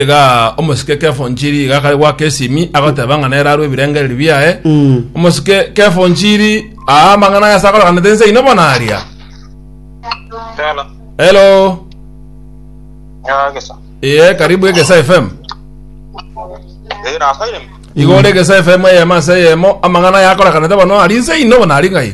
iga omosike kefonchiri iga kare gwaka esimi agoteba ng'a nere arwe ebirengereri biaye Mm. omosike kefonchiri aa amang'ana aya asakorekanete ense ino bono aria Hello. hello Ya gesa. ee karibu egesa fm Eh na saire. igore egesa fm eyemo ase eyemo amang'ana aya akorekanete bono ari nse ino bono ari ng'ai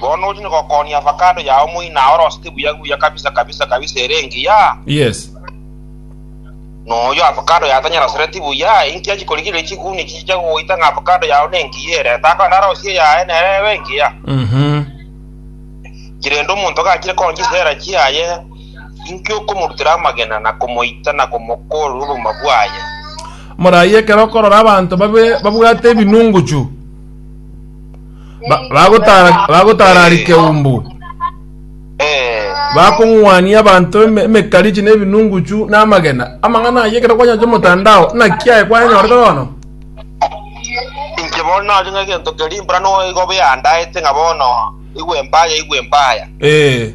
Bono ochia gokonia avacado yao moina aorosete buya buya kabisa kabisa kabisa ere engiya. Yes. Noyo avacado yatanyerosereti buya inki achikorigereria chiguni chichia goita ng'a avacado yao nengiya ere etako ende arosie eyaye nere ebe engiya. Mhm. Kirende omonto gachire konya chisera chiaye inki okomorutera amagena na komoita na komokorera obogima bwaye. Morayi ekero okorora abanto babe babwate ebinunguchu. Ba- bagotara- bagotararike umbu Eh, bakong'wania abanto eme- emekarichi na ebinunguchu na amagena amang'ana ayio ekero kwanyacha omotandao naki aye kwanyanyorete bono inche bono nario ng'a egento keria mbura noigo biandaete ng'a bono igwe mbaya igwe mbaya ee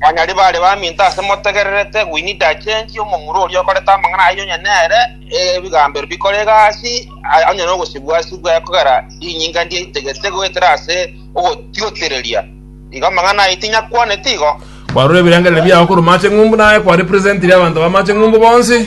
Banyari bare baminto ase motegererete Gwynida achenchie omomura oria okorete amang'ana ayio onye nere ebigambo ebio bikore egasi onye nogosibwa-sibwa kogera rinyinga ndiaitegete goetera ase ogotiotereria. Igo amang'ana ayio tinyakwaneti igo. Kwarora ebirengererio biago korwa Macheng'umbu, naye kwa representire abanto ba Macheng'umbu bonsi.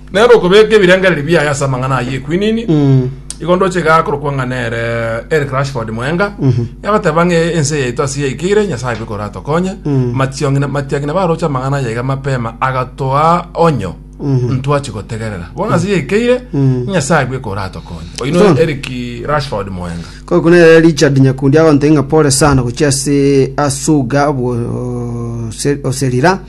Nere okobeka ebirengererio biaye ase amang'ana ayio ekwinini igo ndoche iga akorokwa ng'a nere Eric Rashford Mwenga yagoteba ng'a ense yaito ase yaikeire Nyasae abe koratokonye Mationg'ina Matiang'ina baroche amang'ana aya iga mapema agatoa onyo ntwachi gotegerera bono ase yaikeire Nyasae abe koratokonye oyio no Eric Rashford Mwenga Korokoro nere Richard nyakundi agontebia ng'a pore sana gochia ase asuga obose- oserira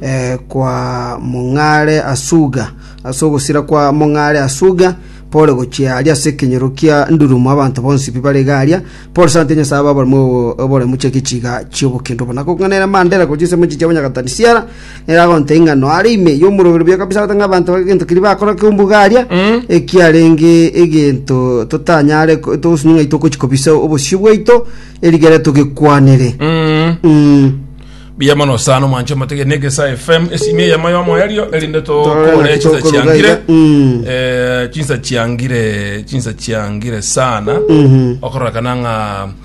eh, kwa mong'are asuga ase ogosira kwa mong'are asuga pore gochia aria ase ekenyoro kia ndurumo abanto bonsi pi bare iga aria pore sana ntebi nyasae ababaremo obo- oboremu chia egechiga chi'obokendo obo nakong'a nere mandera gochia ase emechi chiabo nyagatani siara Ere agonta ing'ano are ime y'omorobereberio kabisa gotenga abanto bake egento keria bakora keumbuga aria, Mm. ekiarenge egento totanyare ko- togosini ng'ai tokochi kobisa obosio bwaito erigere togekwanere. Mm. Mm. Buya mono sana omwancho matege negesa FM esimi eyemo yomo erio erinde Torora tokore naki chinsa tokoroga chiangire iga. Mm. Eh, chinsa chiangire chinsa chiangire sana Mhm. okorora kana ng'a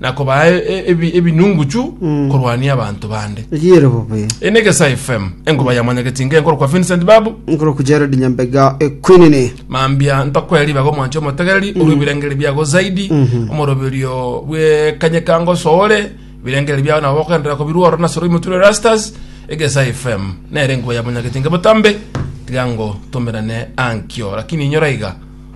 na kobaa e- e- ebi- ebinunguchu korwania abanto bande Riere bobe. Eye ne Gesa FM, engoba ya mwanyagechi inga enkoro kwa Vincent Babu, Nkoro ku Jared Nyambega ekwinini. mambia ntokwera ribaga omwancho omotegereri orwe ebirengeri biago zaidi omoroberio bwe kanyekango soore ebirengeri biago nabo bokoenderera kobirwa oro nasoro imoturo rastas egesa fm nere enkuba ya monyageti nge botambe tiga ngo tomerane ankio lakini inyora iga